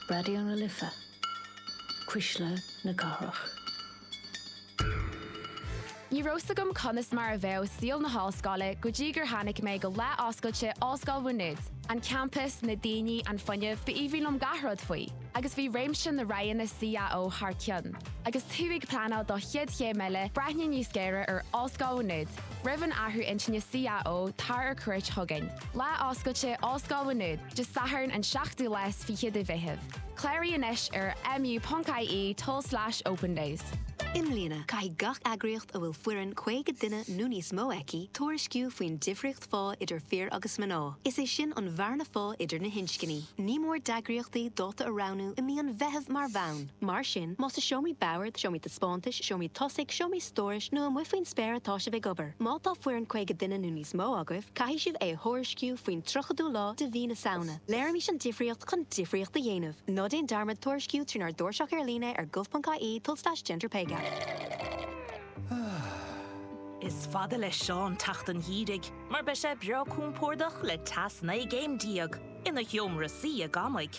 Raidió na Life, Cuisle na Cathrach. Ní raibh 's agam conas mar a bheadh saol na hollscoile go dtí gur tháinig mé go lá oscailte Ollscoil Mhá Nuad. An campas, na daoine, an fuinneamh, ba aoibhinn liom gach rud faoi. Agus bhí réimse na roghanna CAO thar cionn. Agus tú ag pleanáil do chéad chéim eile, breathnaigh níos géire ar Ollscoil Mhá Nuad. Roimh an athrú intinne CAO, tar ar cuairt chugainn. Lá Oscailte, Ollscoil Mhá Nuad, Dé Sathairn an 7ú lá is fiche de Mheitheamh. Cláraigh anois ar mu.ie tulslais opendays. I mbliana, caithfidh gach eagraíocht a bhfuil foireann 50 duine nó níos mó aici tuairisciú faoin difríocht phá idir fir agus mná, is é sin an bhearna phá idir na hinscní. Ní mór d'eagraíochtaí dáta a roghnú i mí an Mheithimh mar bhonn. Mar sin, más i seomraí boird, seomraí taispeántais, seomraí tosaigh, seomraí stórais nó amuigh faoin spéir atá sibh ag obair, má tá foireann 50 duine nó níos mó agaibh, caithfidh sibh é a thuairisciú faoin 30ú lá de mhí na Samhna. Léirímis an difríocht chun difríocht a dhéanamh. Ná déan dearmad tuairisciú trínár dtairseach ar líne ar gov.ie tulslais genderpaygap. Is fada le Seán teacht an gheimhridh mar beidh sé breá compordach le teas 19 gcéim ina sheomra suí i gCamaigh.